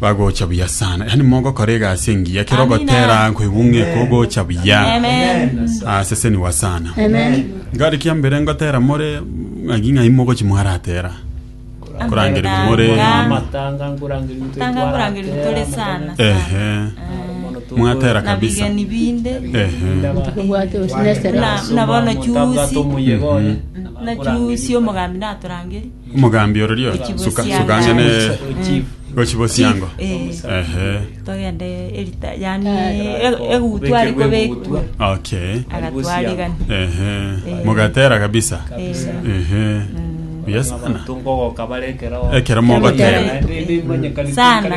Bagocha buya sana. Yaani mogokora egasi engiya kero Amina. ogotera kwebung'e kogocha buya. Amen. Ah, sese niwa sana. Amen. Ngari kia mbere ngotera more ng'aki ng'ai mogochi mwaratera. Kurangeri more. Nga- amatanga nkurangeri ntu Tanga kurangeri tore sana. Ehe. Mwatera kabisa. Nabigeni binde. Ehe. Obwate osinese Na- na bono chusi. omuyegoye Na chusi omogambi natorangeri. Omogambi ororio Gochibosianga. suka suka ang'e ne gochibosiango. Chief, eh. Ehe. togende erita yani e- egutwa ari kobekwa Okay. agatwarigani Ehe. Eh. Mogatera kabisa. Kabisa. Ehe. Buya sana. Tongogoka bare ekero. Ekero mogoteera. Sana.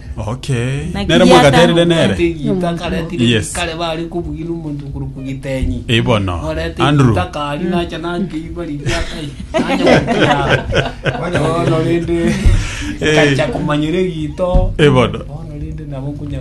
Okay. Na Nere kigiata- mwagaterire nere. Etegita karetire Yes. gikare bare kobwira omonto okorokwa gitenyi. Eh, bono. Orete Andrew. gita kari nacha nakeiba riria kai. Nacha gokira. Bono rende Eh. kacha komanyera egito. Eh, bono. Bono rende nabo kunya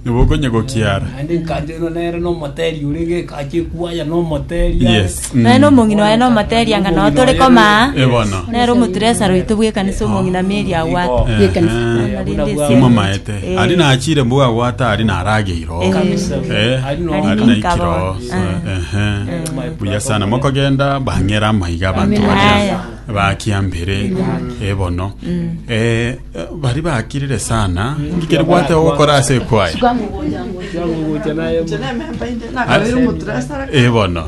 Nibo okonye gokiara. Ande nkanchero nere nomoteri ore gekache kwaya nomoteri. Yes. Naye na omong'ina oye na omoteeri anga nao tore koma aa. Eh, bono. Nere omoturesara oito bw'ekanisa omong'ina Mary agwate. Eh, Yekanisa. eh. Nari ndi esiana. Timomaete. Eh. Ari nachire mbugo agwata ari narageire oo. Eh. Kabisa. Eh, Ari no- ari Ari naikire nikaba. oo. Ah. Ehe. Eh. Buya sana mokogenda bang'era amaiga abanto Amen. baria Aya. bakiambere ebono Eh, Baria bakirire sana, inki keria bwate ogokora ase ekwaya? Eh, bono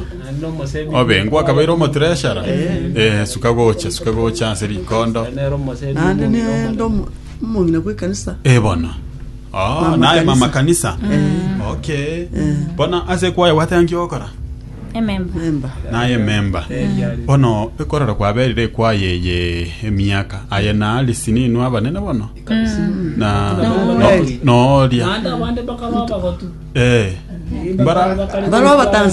obengwa akabeire omotureshara Eh, suka gocha suka gocha ase rikondo naende nende omo- omong'ina bw'ekanisa Eh, bono Oh, Mama naye kanisa. mama kanisa okay bono ase ekwaya bwate enki ogokora ememba. Naye ememba. Bono ekorero kwaberire ekwaya eye emiaka aye na Alice ninwe abanene bono. Na no- nooria. Naende abande bakarwa abagotu. Eh. Mbara Barwa Abatanzania.